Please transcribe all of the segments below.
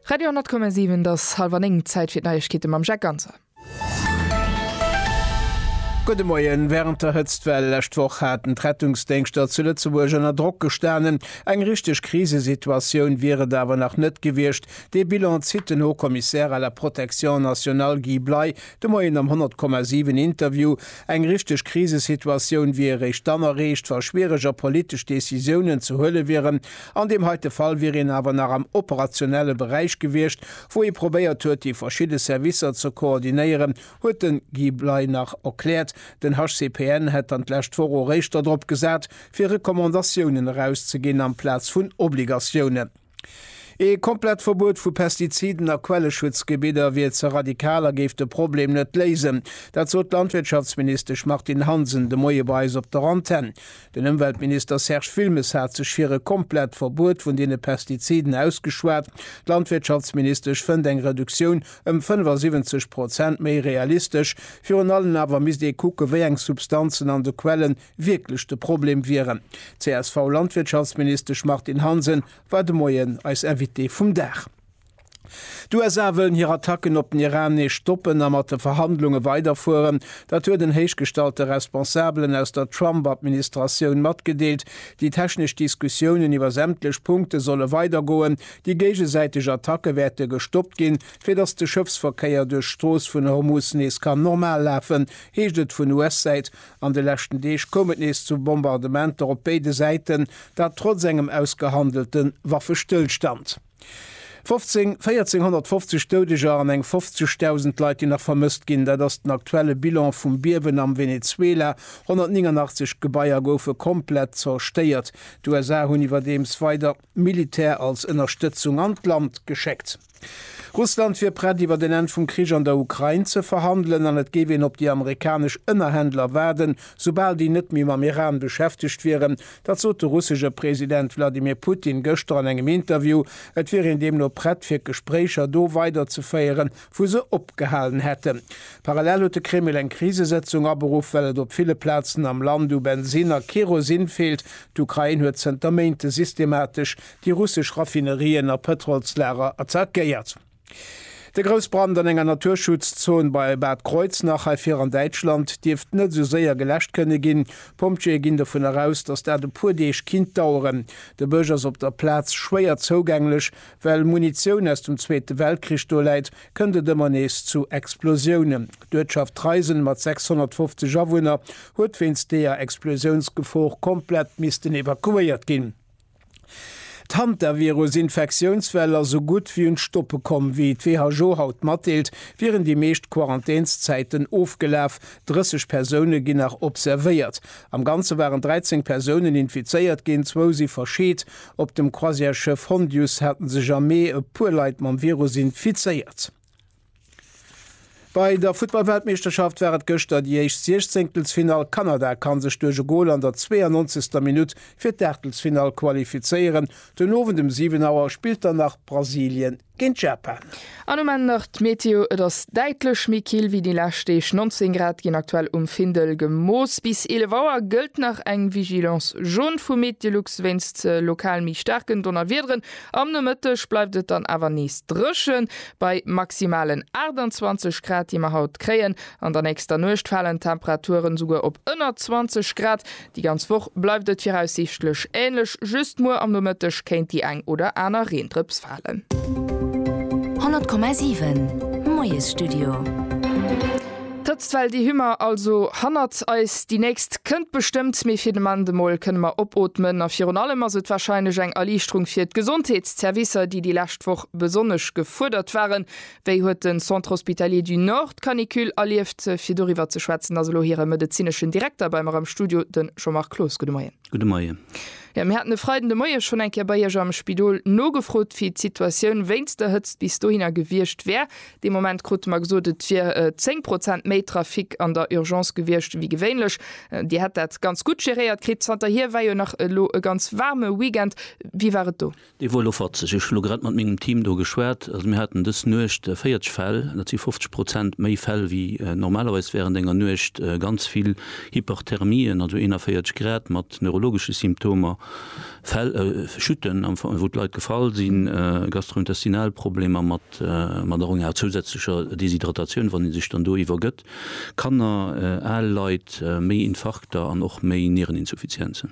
Radio 10,7 et ass halwer 9, Zäit fir d'Neiegkeete mam Jacques Ganser. Gudde Moien. Wärend der Hëtztwell lescht Woch haten d'Rettungsdéngschter zu Lëtzebuerg ënner Drock gestanen. Eng richteg Krisesituatioun wier et awer nach net gewiescht. Dee Bilan zitt den Haut-Commissaire à la protection nationale Guy Bley de Moien am 10,7 Interview. Eng richteg Krisesituatioun wier eréischt dann erreecht, wa schwiereger politesch Decisiounen ze huele wieren. An deem heite Fall wier een awer nach am operationelle Beräich gewiescht, wou ee probéiert huet, déi verschidde Servicer ze koordinéieren, huet de Guy Bley nach erkläert. Den HCPN hätt dann d'lescht Woch eréischter drop gesat, fir Recommandatiounen erauszeginn amplaz vun Obligatiounen. Ee komplett Verbuet vu Pestiziden a Quelleschutzgebidder wier ze radikal a géif de Problem net léisen. Dat sot d'Landwirtschaftsministesch Martine Hansen de Moie bei eis op der Antenn. Den Ëmweltminister Serge Wilmes hat sech fir e komplett Verbuet vun deene Pestiziden ausgeschwat. D'Landwirtschaftsministesch fënnt eng Reduktioun ëm 75 Prozent méi realistesch. Virun allen awer misst ee kucken, wéi eng Substanzen an de Quellen wierklech de Problem wieren. D'CSV-Landwirtschaftsministesch Martine Hansen war de Moien eis Invitée vum Dag. D'USA wëllen hir Attacken op den Iran nees stoppen a mat de Verhandlunge weiderfueren. Dat huet en héichgestallte Responsabelen aus der Trump-Administratioun matgedeelt. Déi technesch Diskussiounen iwwer sämtlech Punkte solle weidergoen. Déi géigesäiteg Attacke wäerte gestoppt ginn, fir datt de Schëffsverkéier duerch d'Strooss vun Hormuz nees kann normal lafen, heescht et vun US-Säit. An de leschten Deeg koum et nees zu Bombardementer op béide Säiten, dat trotz engem ausgehandelte Waffestëllstand. 15, 1450 Doudeger an eng 50.000 Leit, déi nach vermësst ginn. Dat ass den aktuelle Bilan vum Biewen am Venezuela. 189 Gebaier goufe komplett zerstéiert. D'USA hunn iwwerdeems weider Militär als Ënnerstëtzung an d'Land geschéckt. Russland wier prett, iwwer en Enn vum Krich an der Ukrain ze verhandelen an et géif een op déi amerikanesch Ënnerhändler waarden, soubal déi net méi mam Iran beschäftegt wieren. Dat sot de russesche President Wladimir Putin gëschter an engem Interview. Et wier een deemno prett fir d'Gespréicher do weiderzeféieren, wou se opgehalen hätten. Parallel huet de Kreml eng Krisesëtzung aberuff, well et op ville Plazen am Land u Bensinn a Kerosin feelt. D'Ukrain huet zënter Méinte systematesch déi russesch Raffinerien a Pëtrolslager attackéiert. De Groussbrand an enger Naturschutzzon bei Bad Kreuznach hei vir an Däitschland dierft net esou séier geläscht kënne ginn. D'Pompjeeë ginn dovun eraus, datt dat e puer Deeg kinnt daueren. De Bësch ass op der Plaz schwéier zougänglech. Well Munitioun aus dem Zweete Weltkrich do läit, kënnt et ëmmer nees zu Explosiounen. D'Uertschaft Treisen mat 650 Awunner huet wéinst deeër Explosiounsgefor komplett missten evakuéiert ginn. D'Hantavirus-Infektiounswell ass esou gutt wéi un d'Stoppe komm. Wéi d'WHO haut matdeelt, wieren déi meescht Quarantänszäiten ofgelaf. 30 Persoune ginn nach observéiert. Am Ganze waren 13 Persounen infizéiert ginn, zwou si verscheet. Op dem Croisièresschëff Hondius hate sech am Mee e puer Leit mam Virus infizéiert. Bei der Futtballweltmeeschterschaft war et gëschter déi éischt Siechzenktelfinall. Kanada kann sech duerch e Gol an der 92. Minutt fir d'Aachtelsfinall qualifizéieren. Den Owend um 7 Auer spillt dann nach Brasilien géint Japan. An um Enn nach d'Meteo, Et ass däitlech méi kill wéi déi lescht Deeg, 19 Grad ginn aktuell um Findel gemooss. Bis 11 Auer gëllt nach eng Vigilance jaune vu Meteolux wéinst lokal méi staarken Donnerwiederen. Am Nomëtteg bleift et dann awer nees dréchen, bei maximalen 28 Grad, déi mer haut kréien. An der nächster Nuecht falen d'Temperaturen esouguer op ënner 20 Grad. Déi ganz Woch bleift et viraussiichtlech änlech, just muer am Nomëtteg kéint déi eng oder aner Reendrëps falen. 100,7 Moiesstudio. D'Hëtzt well, déi hu mer also hannert eis. Déi nächst kënnt bestëmmt, mee fir de Moment emol kënne mer opootmen. A virun allem ass et warscheinlech eng Erliichterung fir d'Gesondheetszervicer, déi déi lescht Woch besonnesch gefuerdert waren. Wéi huet de Centre Hospitalier du Nord d'Canicule erlieft? Fir doriwwer ze schwätzen ass elo hire medezineschen Direkter bei mer am Studio, de Jean-Marc Cloos. Gudde Moien. Gudde Moien. Jo, mir haten e Freiden de Moie schonn eng Kéier bei Iech am Spidol nogefrot, wéi d'Situatioun wéinst der Hëtzt bis dohinner gewiescht wär. Dee Moment krute mer gesot, et wier 10 Prozent méi Trafic an der Urgence gewiescht wéi gewéinlech. Dir hätt dat ganz gutt geréiert kritt. Zanterhier war jo nach elo e ganz waarme Weekend. Wéi war et do? Dee wor elo fatzeg. Ech hu elo grad mat mengem Team do geschwat. Also mir haten dës Nuecht 40 Fäll. Dat si 50 Prozent méi Fäll wéi normalerweis wärend enger Nuecht. Ganz vill Hyperthermien, also 41 Grad, mat neurologesche Symptomer, Fäll, Chuten, wou d'Leit gefall sinn, gastrointestinal Problemer mat. D'Emmannerung enger zousätzlecher Deshydratatioun, wann ee sech dann do iwwergëtt. Kanner, al Leit, méi Infarkter an och méi Niereninsuffizienzen.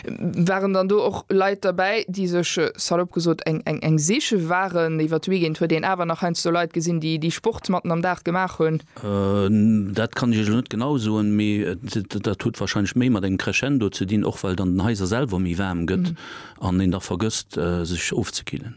Waren dann do och Leit derbäi, déi sech, salop gesot, eng siche waren? Iwwer d'Weekend huet een awer nach heiansdo Leit gesinn, déi Sport matten am Dag gemaach hunn. Dat kann ech Iech elo net genau soen, mee dat huet warscheinlech méi mat engem Crescendo ze dinn, och well dann den Haiser selwer méi waarm gëtt. an een da vergësst sech ofzekillen.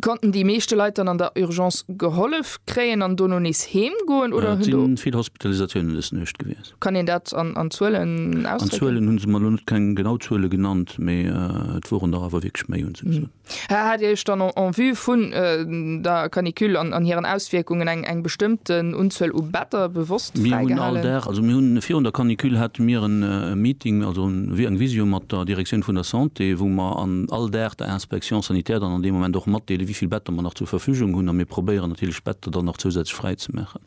Konnten déi meeschte Leit dann an der Urgence gehollef kréien an dono nees heem goen oder hunn do. Et sinn vill Hospitalisatiounen dës Nuecht gewiescht. Kann een dat an Zuelen ausdrécken? An Zuelen hunn se mer elo net keng genau Zuele genannt, mee et woren der awer wierklech méi, hunn se gesot. Hat Dir Iech dann en vue vun der Canicule an hiren Auswierkungen eng bestëmmten Unzuel u Better bewosst fräigehalen. Mir hunn all Dag, also mir hunn virun der Canicule hate mir en Meeting, also wéi eng Visio mat der Direktioun vun der Santé, wou mer an all Dag der Inspection sanitaire dann an deem Moment och matdeele wéi vill Better mer nach zur Verfügung hunn a mir probéieren natierlech Better dann nach zousätzlech fräizemaachen.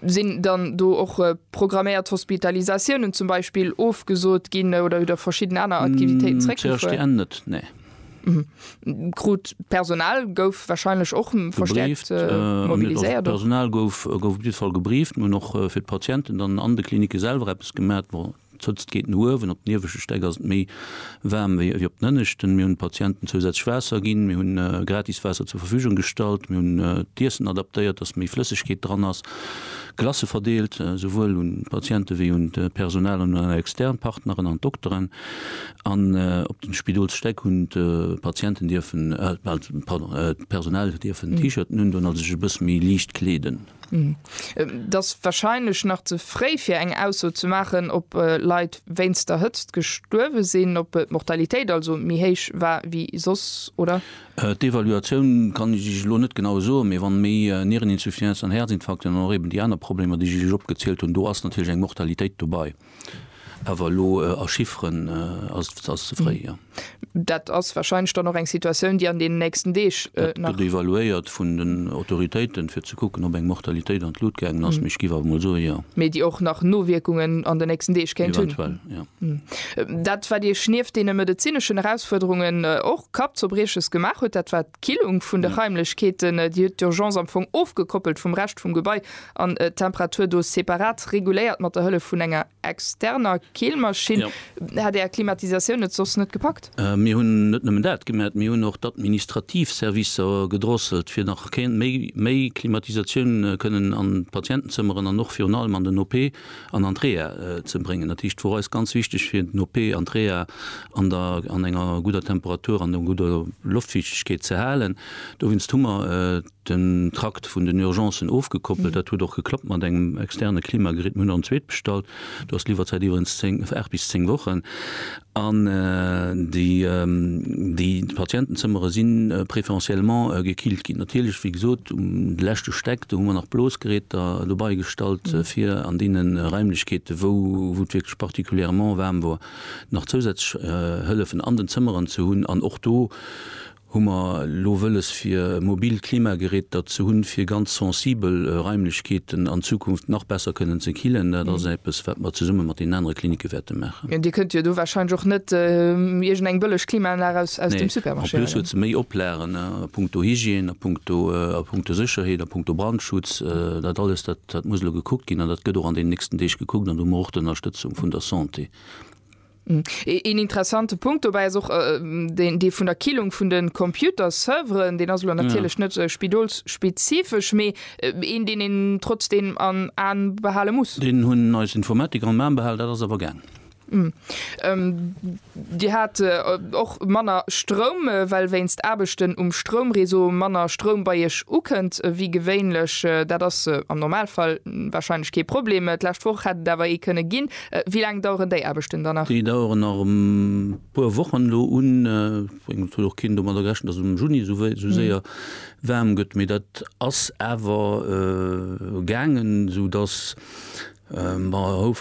Sinn dann do och programméiert Hospitalisatiounen zum Beispill ofgesot ginn oder verschidden aner Aktivitéiten zeréckgefuer? CHDN net, nee. Krut d'Personal gouf wahrscheinlech och verstärkt mobiliséiert? D'Personal gouf op jidde Fall gebrieft. Mir hunn och fir d'Patienten dann an de Klinicke selwer eppes gemat. Bon, d'Hëtzt geet no uewen, op den ieweschte Stäck ass et méi waarm wéi op den ënneschten. Mir hunn d'Patienten zousätzlech Waasser ginn, mir hunn gratis Waasser zur Verfügung gestallt, mir hunn d'Iessen adaptéiert, dass méi Flëssegkeet dran ass, Glacë verdeelt, esouwuel un d'Patiente wéi un d'Personal an un eis extern Partneren an d'Dokteren. An op den Spidolsstäck hunn d'Patienten dierfen, pardon, d'Personal dierfen T-Shirten un doen, also sech e bësse méi liicht kleeden. Et ass warscheinlech nach ze fréi fir eng Ausso ze maachen, ob Leit wéinst der Hëtzt gestuerwe sinn, ob d'Mortalitéit also méi héich war wéi soss, oder? D'Evaluatioun kann ech Iech elo net genau soen, mee wann méi Niereninsuffisancen an Häerzinfarkten an och eben déi aner Problemer, déi ech Iech opgezielt hunn, do ass natierlech eng Mortalitéit dobei. Awer elo a Chifferen ass ze fréi, jo. Dat ass warscheinlech dann och eng Situatioun, déi an deenen nächsten Deeg nach. Dat gëtt evaluéiert vun den Autoritéiten, fir ze kucken, ob eng Mortalitéit an d'Lut gaangen ass, mee ech géif awer mol soen, jo. Mee déi och nach Nowierkungen an den nächsten Deeg kéint hunn. Eventuell, jo. Dat, wat Iech nieft deene medezineschen Erausfuerderungen och Kappzerbrieches gemaach huet, dat war d'Killung vun de Raimlechkeeten. Dir hutt d'Urgence am Fong ofgekoppelt vum Rescht vum Gebai an d'Temperatur do separat reguléiert mat der Hëllef vun enger externer Keelmaschinn. Hätt Är Klimatisatioun et soss net gepackt? Mir hunn net nëmmen dat gemat, mir hunn och d'administrativ Servicer gedrosselt, fir nach méi Klimatisatioun kënnen an d'Patientenzëmmeren an och virun allem an den OP an an d'Reha ze bréngen. Dat heescht, et wor eis ganz wichteg, fir den OP an d'Reha an enger gudder Temperatur an enger gudder Loftfiichtegkeet ze halen. Dowéinst hu mer den Trakt vun den Urgencen ofgekoppelt. Dat huet och geklappt mat engem externe Klimagerät. Mir hunn nach en zweet bestallt. Do ass d'Liwwerzäit iwwerens 10, 8 bis 10 Wochen. An déi, déi Patientenzëmmere si préférentiellement gekillt ginn. Natierlech, wéi gesot, um de leschte Stäck, do hu mer nach Blosgeräter dobei gestallt, fir an deene Raimlechkeeten, wou, wou et wierklech particulièrement waarm wor, nach zousätzlech Hëllefen an den Zëmmeren ze hunn. An och do hu mer elo wëlles fir e mobilt Klimageräter ze hunn, fir ganz sensibel Raimlechkeeten an Zukunft nach besser kënnen ze killen. Dat ass eppes, wat mer zesumme mat deenen anere Klinicke wäerte maachen. Dir kënnt jo do warscheinlech och net iergendeng bëlleg Klimaanlag aus dem Supermarché huelen? Nee, en plus huet se méi Oplagen a puncto Hygiène, a puncto, a puncto Sécherheet, a puncto Brandschutz. Dat alles, dat muss elo gekuckt ginn an dat gëtt och an deenen nächsten Deeg gekuckt an do hu mer och d'Ënnerstëtzung vun der Santé. Hm. Een interessante Punkt dobäi ass och deen, dee vun der Killung vun de Computer-Serveren. Deen ass elo natierlech net spidolsspezifesch, mee een, deen een trotzdeem am A behale muss. Deen hunn eis Informatiker am A behalen, dat ass awer gaang. Hm. Dir hat och manner Stroum, well wéinst Aarbechten um Stroumreseau manner Stroum bei Iech ukënnt wéi gewéinlech. Dat ass am Normalfall warscheinlech kee Problem. D'lescht Woch hätt et awer ee kënne ginn. Wéi laang daueren déi Aarbechten dann nach? Déi daueren nach e puer Wochen elo un. Ech mengen, et huet och keen domadder gerechent, dass et am Juni esou séier waarm gëtt, mee dat ass awer gaangen, soudass mer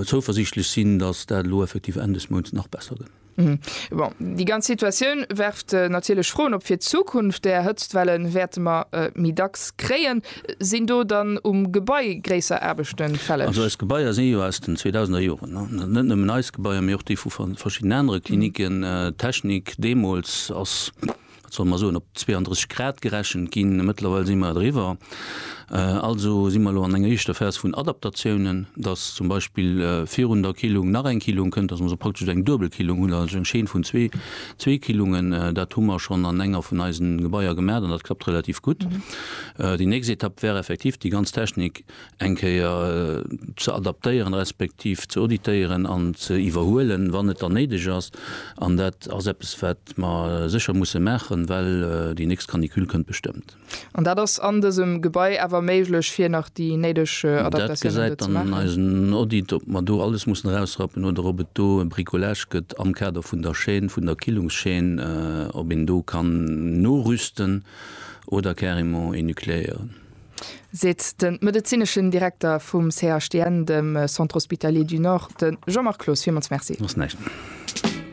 zouversiichtlech sinn, dass dat elo effektiv Enn des Mounts nach besser gëtt. Bon, déi ganz Situatioun werft natierlech Froen op fir d'Zukunft. Där Hëtztwelle wäerte mer méi dacks kréien. Sinn do dann um Gebai gréisser Aarbechte fälleg? Also eis Gebaier si jo aus den 2000er Joren. Net nëmmen eis Gebaier, mee och déi vu verschiddenen anere Klinicken. D'Technik deemools ass wat solle mer soen, op 32 Grad gerechent ginn. Mëttlerweil si mer driwwer. Also si mer elo an enger éischter Phas vun Adaptatiounen, dass zum Beispill virun der Killung nach eng Killung kënnt, dass mer also praktesch eng duebel Killung hunn, also eng Chaîne vun zwee, zwee Killungen. Dat hu mer schonn an enger vun eisen Gebaier gemaach an dat klappt relativ gutt. Déi nächst Etapp wär effektiv, déi ganz Technik eng Kéier ze adaptéieren, respektiv ze auditéieren an ze iwwerhuelen, wann et dann néideg ass. An dat ass eppes, wat mer sécher musse maachen, well déi nächst Canicule kënnt bestëmmt. An dat ass an dësem Gebai awer méiglech, fir nach déi néideg Adaptatiounen do ze maachen? Dat gesäit dann eisen Audit, ob mer do alles mussen erausrappen oder ob et do e Bricolage gëtt am Kader vun der Chaîne, vun der Killungschaîne, ob een do kann norüsten oder carrément énucléieren. seet de medezineschen Direkter vum CHDN, dem Centre Hospitalier du Nord, de Jean-Marc Cloos. Villmools Merci.